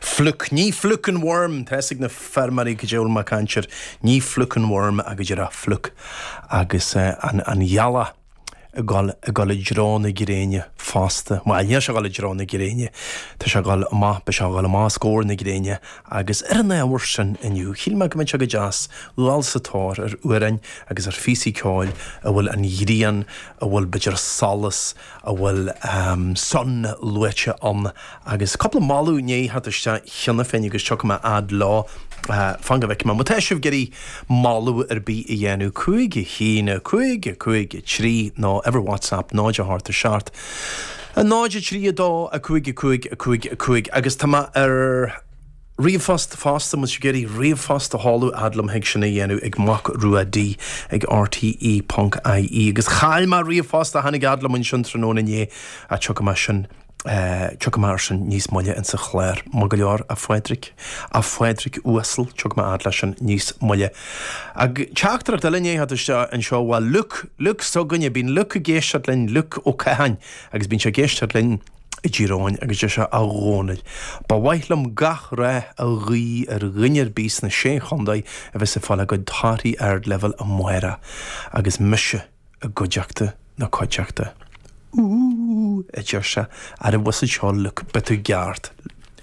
Fluke, ní fluke an worm, tá fhios ag na feirmeoirí go diabhal má caintear ní fluke an worm agus ag rá fluke agus an ghealach ag dul, ag dul i dtreo na gréine fosta. Bhuel, níl sé ag dul i dtreo na gréine, tá sé ag dul amach, beidh sé ag dul amach os comhair na gréine agus ar an ábhar sin inniu, shíl mé go mbeadh sé go deas dul sa tóir ar amhráin agus ar phíosaí ceoil a bhfuil an ghrian, a bhfuil b'fhéidir solas, a bhfuil Sun luaite ann, agus cúpla moladh i ndiaidh theacht isteach cheana féin agus tiocfaidh mé a fhad leo. Fan go bhfeicfidh mé. Má tá sibh ag iarraidh moladh ar bith a dhéanamh, cúig a haon, a cúig, cúig a trí, nó uimhir WhatsApp 0 a hocht a 7 a 0 a 3 2 a 5 a 5 a 5 a 5 agus tá mé ar. Ríomhphost, Fosta, má tá sibh ag iarraidh ríomhphost a sheoladh fhad liom thig sin a dhéanamh ag Mac Rua D ag rte ponc ie agus chaill mé ríomhphost a tháinig fhad liom ansin tráthnóna inné ach tiocfaidh mé sin, tiocfaidh mé ar sin níos moille insa chlár. Maith go leor, a Phádraic, a Phádraic uasal, tiocfaidh mé fhad le sin níos moille. Agus teachtaireacht eile i ndiaidh theacht isteach anseo, bhuel, Luke, Luke s'againne, bíonn Luke ag éisteacht linn, Luke Ó Catháin agus bíonn sé ag éisteacht linn, i nDoire agus deir sé, A Dhónaill, ba mhaith liom gach rath a ghuí ar dhuine ar bith sna Sé Chontae a bheas ag fáil a gcuid torthaí ardleibhéil amárach agus mise i gcuideachta na cuideachta. Ooh, a deir sé, neirbhís ansin Luke? Beidh tú i gceart.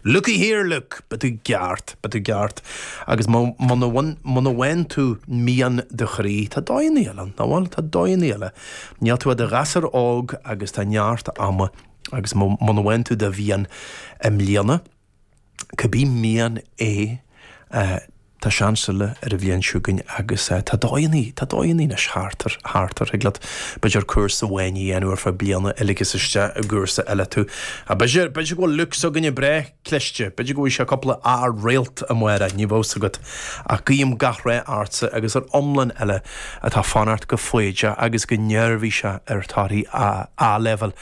Looky here, look! Beidh tú i gceart, beidh tú i gceart. Agus muna, muna bhain, muna bhain tú mian do chroí, tá dóigheannaí eile, nach bhfuil, tá dóigheannaí eile. Níl tú ach i do ghasúr óg agus tá neart ama. Agus muna, muna bhain tú do mhian i mbliana, cibé mian é, eh, Tá seans eile ar an bhliain chugainn agus tá dóigheannaí, tá dóigheannaí anois thart, thart, ar thig leat, b'fhéidir cúrsa amháin a dhéanamh ar feadh bliana eile agus isteach i gcúrsa eile tú. Ach b'fhéidir, b'fhéidir go bhfuil Luke s'againne breá cliste, b'fhéidir go bhfaighidh sé cúpla A réalt amárach, ní bheadh 's agat. Ach guím gach rath ortsa agus ar iomlán eile atá ag fanacht go foighdeach agus go neirbhíseach ar torthaí A-Leibhéil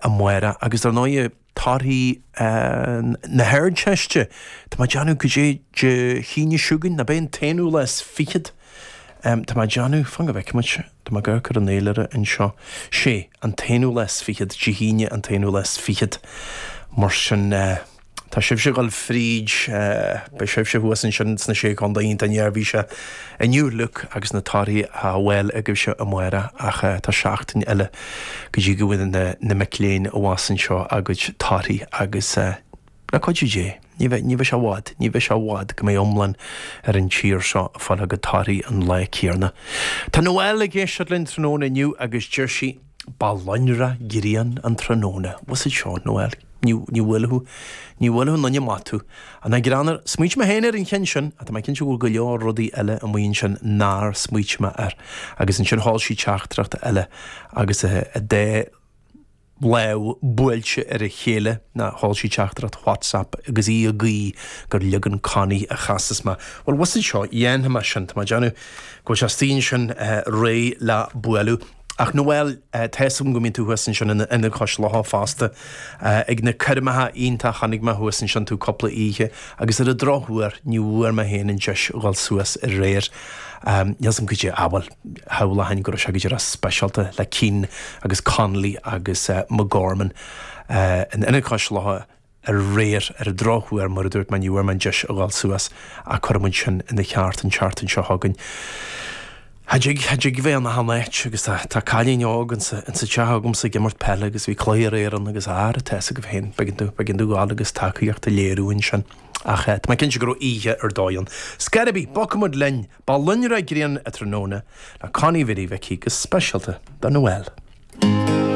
amárach. Agus dar ndóighe. torthaí na hArdteiste. Tá mé ag déanamh gur Dé hAoine chugainn, nó beidh an t-aonú lá is fichead. Tá mé ag déanamh, fan go bhfeicimid, tá mé ag amharc ar an fhéilire anseo. 'Sé, an t-aonú lá is fichead, Dé hAoine an t-aonú lá is fichead. Mar sin, tá sibhse ag dul fríd, beidh sibhse thuas ansin sna Sé Chontae, iontach neirbhíseach. Inniu Luke agus na torthaí le fáil agaibhse amárach ach tá seachtain eile go dtí go bhfaighidh na mic léinn abhus anseo a gcuid torthaí agus le cuidiú Dé, ní bheidh, ní bheidh sé i bhfad, ní bheidh sé i bhfad go mbeidh iomlán ar an tír seo ag fáil a gcuid torthaí an lá céanna. Tá Noelle ag éisteacht linn tráthnóna inniu agus deir sí. Ba lonrach grian an tráthnóna. Was it seo Noelle? Ní, ní bhfuil thú, ní bhfuil thú, Nunya Matu. An ea, greannmhar, Smaoitigh mé féin ar an cheann sin, ach tá mé cinnte go bhfuil go leor rudaí eile amuigh ansin nár smaoitigh mé air. Agus ansin sheol sí teachtaireacht eile, agus a dá láimh buailte ar a chéile, ná sheol sí teachtaireacht WhatsApp, agus í ag guí gur leagan Connie a chasfas mé. Bhuel, was it seo, dhéanfaidh mé sin, tá mé ag déanamh go bhfuil sé istigh ansin réidh le bualadh. Ach Noelle, tá 'fhios agam go mbíonn tú thuas ansin in Ionad Cois Locha fosta ag na coirmeacha iontach, chonaic mé thuas ansin tú cúpla oíche agus ar an drochuair ní bhfuair mé féin an deis a dhul suas aréir, níl 'fhios agam goidé, bhuel, shamhlóchainn go raibh sé go díreach speisialta le Keane agus Connolly agus McGorman in Ionad Cois Locha. aréir ar an drochuair, mar a dúirt mé ní bhfuair mé an deis a ghabháil suas ach cuirfimid sin ina cheart an tseachtain seo chugainn. Cha dtig, cha dtig a bheith in achan áit agus tá, tá cailín óg ansa, ansa teach agamsa ag imirt peile agus bhí cluiche aréir ann agus a, ara tá fhios agaibh féin, b'éigean domh, b'éigean domh dhul agus tacaíocht a léiriú ansin. Ach eh, tá mé cinnte go raibh oíche ar dóigh ann. Scor ar bith, bogfaimid linn, Ba lonrach grian an tráthnóna le Connie Mhary Mhicí go speisialta do Noelle.